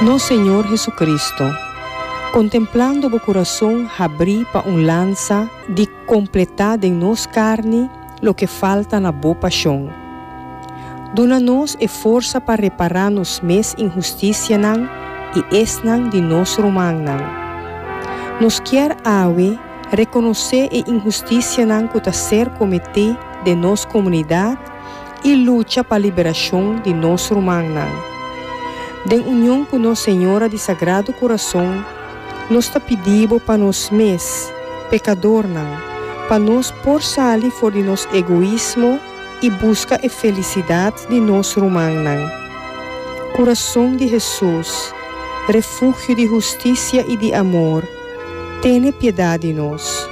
Nos Señor Jesucristo, contemplando bo corazon habrí pa un lansa di completá den nos carni loke falta na bo pasion. Duna nos e forsa pa repará nos mes inhusticianan i esnan di nos rumannan. Nos kier awe reconocé e inhusticianan cu ta ser cometé den nos comunidad, i lucha pa liberashon di nos rumannan. Den union ku nos Señora di Sagrado Kurason, nos ta pidi bo pa nos mes, pekadornan, pa nos por sali for di nos egoismo i buska e felisidat di nos rumannan. Kurason di Hesus, refugio di hustisia i di amor, tene piedat di nos.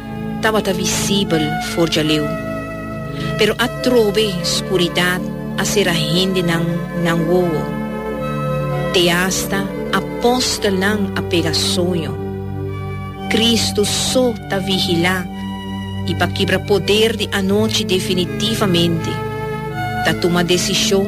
tabata visibel for djaleu, pero atrobe skuridat a sera hendenan nan wowo. Te asta apòstelnan a pega soño. Kristu so ta vigilá i pa kibra poder di anochi definitivamente, ta tuma desishon,